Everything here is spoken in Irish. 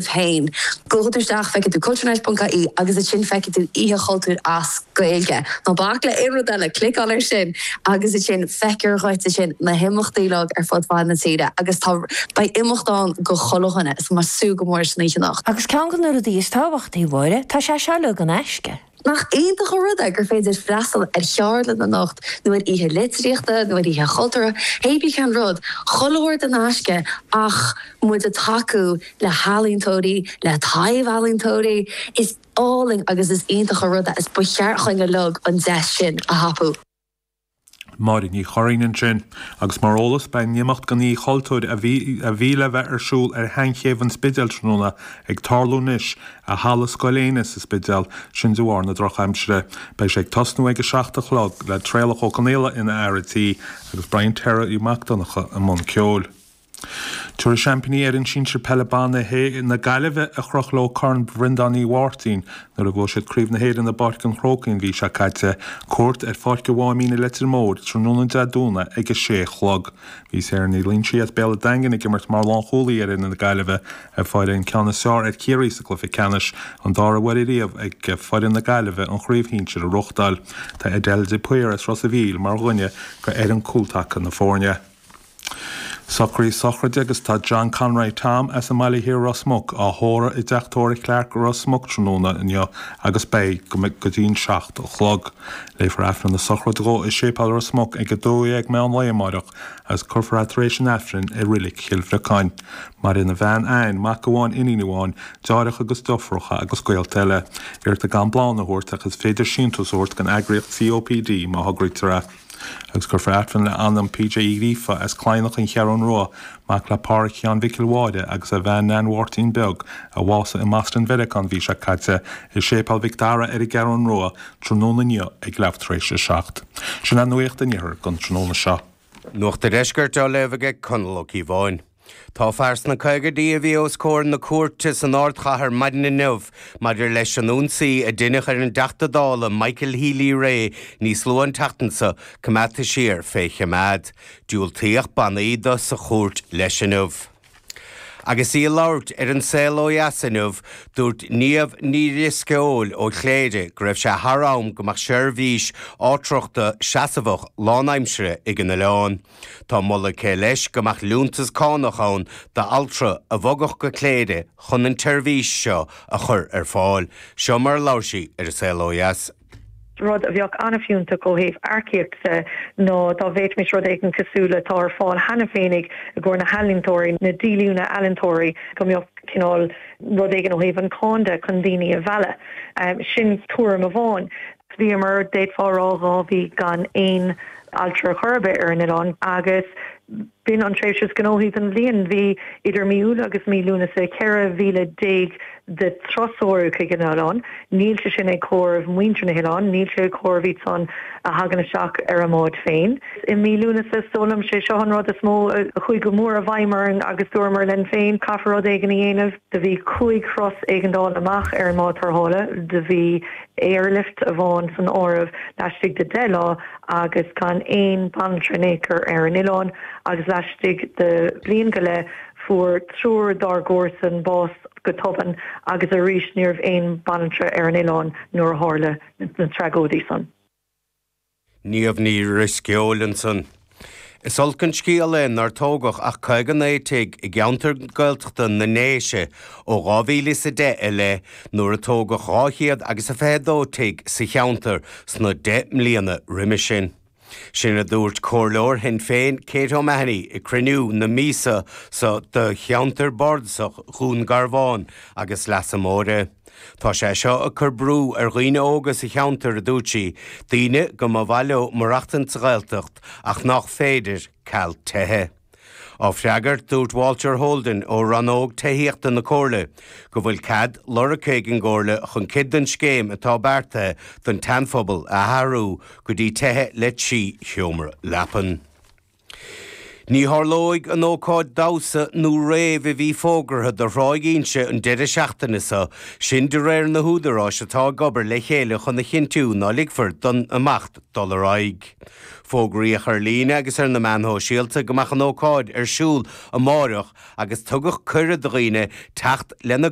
féin. Gabhfaidh tú isteach, feicfidh tú culturenet ponc ie agus ansin feicfidh tú Oíche Chultúir as Gaeilge. Ná bac le aon rud eile, cliceáil ar sin agus ansin feicfear dhuit ansin na himeachtaí uilig ar fud fad na tíre agus tá, beidh imeacht ann do chuile dhuine so tá mé ag súil go mór leis an oíche anocht. Agus ceann de na rudaí is tábhachtaí, Mháire, tá sé seo uilig in aisce. Nach iontach an rud é gur féidir freastal ar cheardlann anocht nó ar oíche litríochta nó ar oíche chultúrtha, hé bith cén rud, chuile shórt in aisce ach muid ag tacú le healaíontóirí, le taibh-ealaíontóirí. Is álainn agus is iontach an rud é is ba cheart dhúinn uilig an deis sin a thapú. Máire Ní Churraoin ansin. Agus mar eolas, beidh an imeacht den Oíche Chultúir a bhí le bheith ar siúl ar sheanchéibh an Spidéil tráthnóna ag tarlú anois i Halla Scoil Éanna sa Spidéal, sin de bharr na drochaimsire. Beidh sé ag tosnú ag a seacht a chlog le Traolach Ó Conghaola ina fhear tí agus Brian Terry Mac Donncha i mbun ceoil. Tabharfaidh Seaimpíní Éireann Sinsir Peile Ban na Gaillimhe a chroch leo Corn Bhrendán Uí Mháirtín nuair a bhuaigh siad Craobh na hÉireann i bPáirc an Chrócaigh an mhí seo caite cuairt ar Pháirc a' Mháimín i Leitir Móir tráthnóna Dé Domhnaigh ag a sé a chlog. Bhí Sarah Ní Loingsigh as Béal a'Daingin ag imirt mar lánchúlaí ar fhoireann na Gaillimhe a fuair an ceann is fearr ar Chiarraí sa cluiche ceannais, an dara huair riamh ag foireann na Gaillimhe an chraobh shinsir a ghnóthachtáil. Tá Adele de Paor as Ros a' Mhíl mar dhuine d'fhoireann cúltaca na foirne. Socraithe sochraide agus tá John Conroy Tom as an mBaile Thiar Ros Muc á thórradh i dTeach Tóraigh Chlarke Ros Muc tráthnóna inniu agus beidh go dtí'n seacht a chlog. Léifear Aifreann na sochraide dhó i Séipéal Ros Muc ag 12 meán lae amáireach agus curfar é tar éis an Aifrinn i Rilic Chill Bhriocáin. Maireann a bhean Anne, mac amháin, iníon amháin, deartháireacha agus deofracha agus gaolta eile. Iarrtar gan bláthanna a thabhairt ach is féidir síntiús a thabhairt don eagraíocht COPD má thograítear é. agus léifear Aifreann le h-anam PJ Uí Ghríofa as Cladhnach an Cheathrún Rua, mac le Pádhraic Sheáin Mhicil Mháire agus a bhean Neain Mháirtín Beag, a bhásaigh i mBoston Mheiriceá an mhí seo caite, i Séipéal Mhic Dara ar an gCeathrún Rua, tráthnóna inniu ag leamh tar éis a seacht. Sin nuacht an Iarthair don tráthnóna seo. Nuacht an Deiscirt á léamh ag Conall Ó Cíobháin. Tá fear sna caogaidí a bhí os comhair na cúirte san ardchathair maidin inniu maidir leis an ionsaí a deineadh ar an dTeachta Dála Michael Healy-Rae níos luaithe an tseachtain seo coimeádta siar fé choimeád. Diúltaíodh bannaí do sa chúirt leis inniu. Agus í ag labhairt ar An Saol Ó Dheas inniu, dúirt Niamh Ní Dhrisceoil ó Chléire go raibh sé thar am go mbeadh seirbhís altrachta seasamhach lánaimseartha ag an oileán. Tá moladh aici leis go mbeadh liúntas cánach ann d'altra a bhogadh go Cléire chun an tseirbhís seo a chur ar fáil. Seo mar a labhair sí ar An Saol Ó Dheas. Rud a bheadh an-fhiúntach ó thaobh earcaíocht de ná dá bhféadfaimis rud éigin cosúil le atá ar fáil cheana féinig i gcomhair na healaíontóirí, na díolúine ealaíontóirí, go mbeadh cineál rud éigin ó thaobh an cháin de chun daoine a mhealladh. Sin tuairim amháin. Bhíomar, d'fhéadfá a rá, dhá mhí gan aon altra ar chor ar bith ar an oileán agus b'in an tréimhse is gnóthaí den bhliain. Bhí idir mí Iúil agus mí Lúnasa 14,000 de thurasóirí chuig an oileán. Níl sé sin ag comhaireamh muintir na hoileáin, níl sé ag comhaireamh iad san a thagann isteach ar a mbáid féin. I mí Lúnasa, is dóigh liom, sé seo an rud is mó a chuaigh go mór i bhfeidhm orainn agus dúramar linn féin, caithfear rud éigin a dhéanamh. Do bhí cúig thuras éigeandála amach ar an mbád tarrthála. Do bhí airlift amháin san áireamh laistigh de 10 lá agus gan aon bhanaltra in aon chor ar an oileán, agus laistigh de bhliain go leith fuair triúr dár gcomharsan bás go tobann agus arís ní raibh aon bhanaltra ar an oileán nuair a tharla na tragóidí san. Niamh Ní Dhrisceoil ansan. Is olc an scéal é nár tógadh ach 59 tigh i gceantar Gaeltachta na nDéise ó 2010 i leith nuair a tógadh dhá chéad agus a fiche a dó tigh sa cheantar sna deich mbliana roimis sin. Sin a dúirt comhairleoir Shinn Féin Kate O'Mahony ag cruinniú na míosa so de Cheantar Bardasach Dhún Garbhán agus Leasa Móire. Tá sé seo ag cur brú ar dhaoine óga sa cheantar, a dúirt sí, daoine go mba mhaith leo maireachtaint sa Ghaeltacht ach nách féidir, ceal tithe. Á freagairt, dúirt Walter Holden ó rannóg tithíochta na Comhairle go bhfuil cead lorgtha ag an gComhairle chun cuid den scéim atá beartaithe don tSeanphobal a athrú go dtí tithe le trí sheomra leapan. Ní tharlóidh an ócáid damhsa nó réibh a bhí fógartha do Thráigh Inse an deireadh seachtaine seo, sin de réir na húdaráis atá ag obair le chéile chun a chinntiú ná ligfear don imeacht dul ar aghaidh. Fógraíodh ar líne agus ar na meáin shóisialta go mbeadh an ócáid ar siúl amárach agus tugadh cuireadh do dhaoine teacht lena